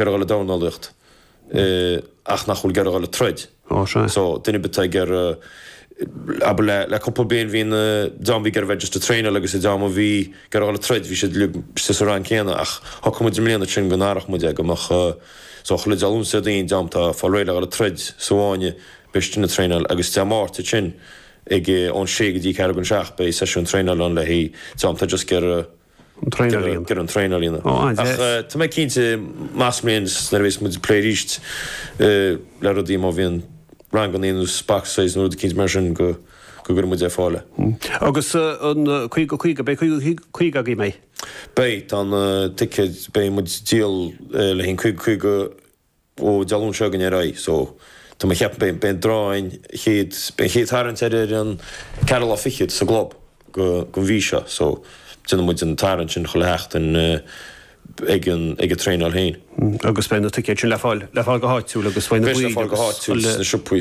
Ag iarraidh a dhul ag dornálaíocht ach nach bhfuil ag iarraidh a dhul ag troid. Ó sea. So, duine ar bith ag iarraidh abair le le cúpla bliain bhí na dream a bhí ag iarraidh a bheith just ag traenáil agus an dream a bhí ag iarraidh a dhul ag troid bhí siad le sa sa rang céanna ach shocraigh muid i mbliana ansin go n-athródh muid é go mbeadh so chuile dream ionsaí daoin dream atá faoi réir le dhul ag troid sa bhfáinne beidh siad sin ag traenáil agus Dé Máirt duit sin ag ón sé go dtí ceathrú don seacht beidh seisiún traenáil ann le haghaidh dream atá just ag iarraidh An traenáil a dhéanamh. Ag iarraidh an traenáil a dhéanamh. Ó, an-deas. Ach tá mé cinnte, amach sa mbliain nuair a bhéas muid ag plé arís le rudaí, má bhíonn ranganna nó boxercise nó rud cinnte mar sin, go gcuirfidh muid ar fáil. Agus an 50-50, beidh 50-50 agaibh, beidh? Beidh, tá na ticéid, beidh muid ag díol le haghaidh an 50-50. ó Dé Luain seo chugainn ar aghaidh so tá mé ag ceapadh beidh an draw an chéad beidh an chéad tarraingt ar ar an ceathrú lá fichead sa gclub de den mhí seo so déanfaidh muid an tarraingt sin chuile sheachtain ag an ag an traenáil féin agus beidh na ticéid sin le fáil le fáil go háitiúil agus beidh na beidh siad le fáil go háitiúil sna siopaí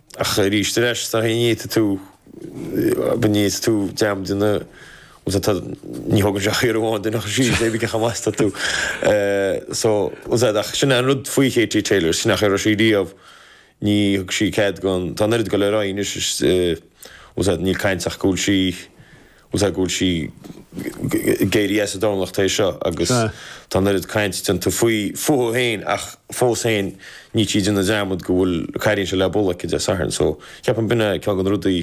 Ach arís tar éis, tá haon ní a ith tú, an ní a ith tú, dream de na, we'll say, tá, ní thógann sé ach iarraidh amháin duine a chur síos, cuma cé chomh maith is atá tú. So, we'll say, ach sin é an rud faoi Katie Taylor, sin nach raibh sí riamh, níor thug sí cead don, tá an oiread go le rá anois is, we'll say, níl caint ach go bhfuil sí, Sea, go bhfuil sí ag éirí as dornálaíocht tar éis seo agus tá an oiread cainte déanta faoi fúithi féin ach fós féin níl sí ag déanamh dearmad go bhfuil an cailín seo le bualadh aici Dé Sathairn so ceapaim gurb in é ceann de na rudaí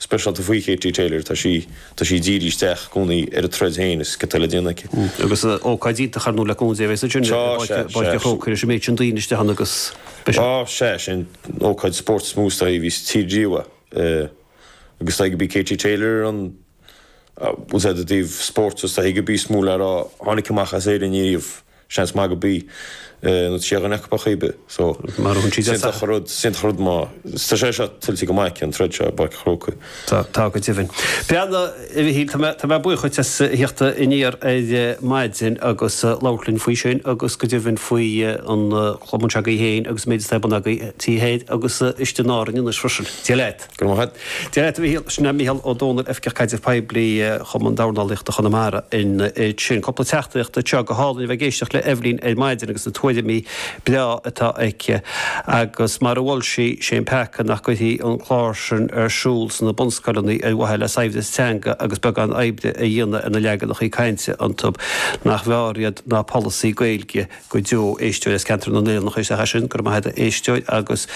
speisialta faoi Katie Taylor, tá sí tá sí ag díriú isteach i gcónaí ar a troid féin is céard atá le déanamh aici. Agus ócáid iontach ar ndóigh le cúnamh Dé a bheas ansin i bPáirc a' Chrócaigh leis an méid sin daoine isteach ann agus beidh sé. Sea, sí an ócáid spóirt is mó is dóigh a bhí sa tír riamh í. agus is dóigh gurb í Katie Taylor ar an we'll say ó thaobh spóirt is dóigh gurb í is mó le rá a tháinig amach as Éirinn ariamh, seans maith gurb í, nó sí duine acu ar chuma ar bith so is iontach an rud, is iontach an rud mar, tá sé seo tuillte go maith aici an troid seo i bPáirc an Chrócaigh. Tá, tá go deimhin. Beanna. A Mhíchíl, tá mé, tá mé buíoch díot as a thíocht aniar ar maidin agus labhairt linn faoi sin agus go deimhin faoin gcumann seo agaibh féin agus an méid atá ar bun agaibh thoir agus istigh in Árainn anois freisin. Dia leat. Go raibh maith a't. Dia leat, a Mhíchíl. Sin é Mícheál Ó Domhnaill, Oifigeach Caidrimh Poiblí Chumann Dornálaíochta Chonamara in Iéid. Sin cúpla teachtaireacht anseo. Go hálainn a bheith ag éisteacht le Eibhlín ar maidin agus na tuairimí breá atá aici, agus mar a mhol sí, sé an peaca nach gcuirfí an clár sin ar siúl sna bunscoileanna ar mhaithe le saibhreas teanga agus beagán oibre a dhéanamh ar na leaganacha cainte iontu. Nach mb'fhearr iad ná polasaí Gaeilge go deo! Éisteoir as Ceantar na nOileán a chuir isteach é sin, go raibh maith agat a éisteoir, agus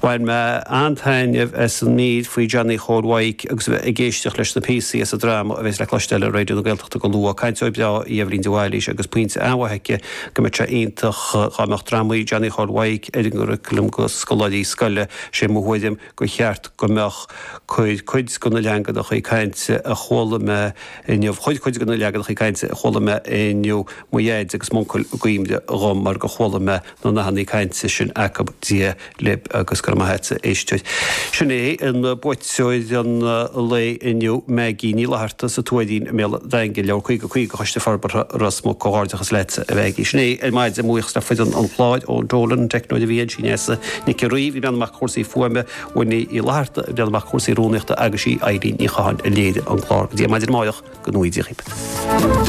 bhain mé an-taitneamh as an mír faoi Johnny Chóil Mhaidhc agus a bheith ag éisteacht leis na píosaí as an dráma a bhéas le cloisteáil ar Raidió na Gaeltachta go luath. Cainteoir breá í Eibhlín de Bhailís agus pointe an-mhaith aici go mbeadh sé iontach dhá mbeadh drámaí Johnny Chóil Mhaidhc ar an gcuraclam go scoláirí scoile, 'sé mo thuairim gur cheart go mbeadh. Chuir cuid go na leaganachaí cainte a chuala mé inniu, chuir cuid go na leaganachaí cainte a chuala mé inniu, mo Dhaid agus m'Uncail i gcuimhne dhom mar gur chuala mé na nathannaí cainte sin acub Dia libh agus go raibh maith agat, a éisteoir. Sin é an buaiteoir an lae inniu, Maggie Ní Fhlatharta sa Tuairín i mBéal an Daingin, Leabhar Caoga Caoga Choiste Forbartha Ros Muc. Comhghairdeachas leatsa a Mhaggie. Sin é ar maidin, mo bhuíochas le foireann an chláir, Eoin Dolan, an teicneoir a bhí ansin, Neasa Nic an Rí, a bhreathnaigh amach go chúrsaí fuaime, Winnie Uí Fhlatharta, a bhreathnaigh amach go chúrsaí rúnaíochta, agus sí Eibhlín Ní Chatháin a léirigh an clár. Go dtí ar maidin amárach, go ngnóthaí Dia dhaoibh.